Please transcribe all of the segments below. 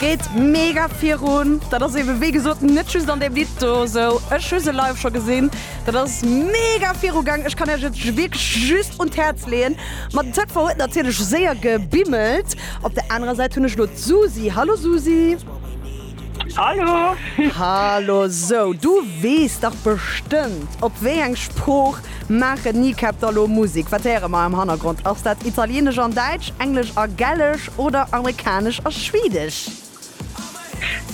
Geet mega virun! Dat ass eebe wéi gesot net just an deem Lidd do esou. Ech hu se live scho gesinn, dat ass mega virugaang. Ech kann Iech et wierklech just un d'Häerz leeën. Ma den ZV huet natierlech séier gebimmelt. Op der anerer Säit hunn ech elo d'Susi. Hallo Susi! Hallo! Hallo! Sou, du weess dach bestëmmt, op wéi eng Sprooch maachen d'Kneecap da lo Musek? Wat héiere mer am Hannergrond? Ass dat Italieenesch an Däitsch, Englesch a Gälesch oder Amerikanesch a Schwedesch?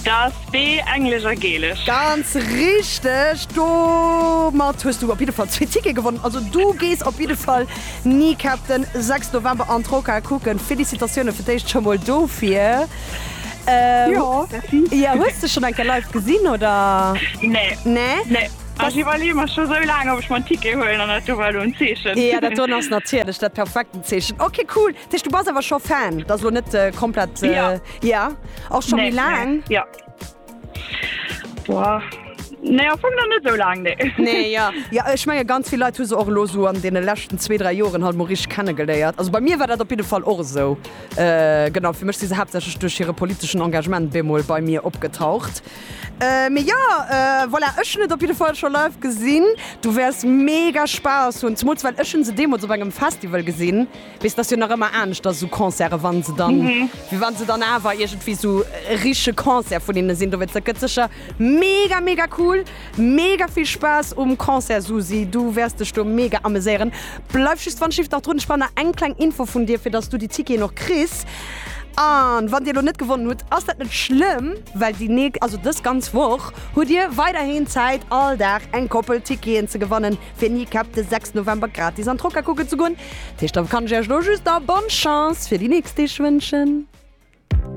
Dat ass B, Englesch a Gälesch. Ganz richteg! Domat hues du op jidde Fall zwee Tickete gewonnen. Also du gees op jidde Fall d'Kneecap den 6 November an d'Rockhal kucken. Félicitatioune fir d'éischt scho mol dofir! Ähm, Jo, merci. Ja, hues du schon enke live gesinn oder? Nee. Nee? Nee. Ech iwwerleeë mer scho sou laang, ob ech mer en Ticket huelen, an dat do war lo en Zeechen. Ja, dat do ass natierlech dat perfekten Zeechen. Okay, cool. Dat heescht, du bass awer scho Fan? Dat ass lo net komplett. Ja. Ja? Och scho méi laang? Ja. Boah. Nee, am Fong nach net sou laang, nee. Nee, ja. Ja, ech menge ganz vill Leit hu se och elo esou an deene leschten zwee, dräi Joren halt emol richteg kennegeléiert. Also bei mir war dat op jidde Fall och esou. Genau, fir mech si se haaptsächlech duerch hire politeschen Engagement bemol bei mir opgetaucht. Mee jo, voilà, ech hunn et op jidde Fall scho live gesinn. Du wäers mega Spaass hunn, zemools well ech hu se deemools op engem Festival gesinn. Weess dass jo nach ëmmer anescht ass esou Concerten wann se dann wéi wann se dann awer iergendwéi esou e richtege Concert vun hinne sinn dowéinst dat gëtt sécher mega mega cool. Mega vill Spaass um Concert Susi, du wäers dech do mega ameséieren. Bleif just wann Shift nach drun, ech brauch nach eng kleng Info vun dir fir dass du déi Ticketen och kriss. An wann dir elo net gewonnen hutt ass dat net schlëmm well déi nächst, also dës ganz Woch hutt dir weiderhin Zäit all Dag eng Koppel Ticketen ze gewannen. fir Kneecap de 6 November gratis an d'Rocca kucken ze goen. Dat heescht, da kann ech Iech elo just da bonne Chance fir déi nächst Deeg wënschen.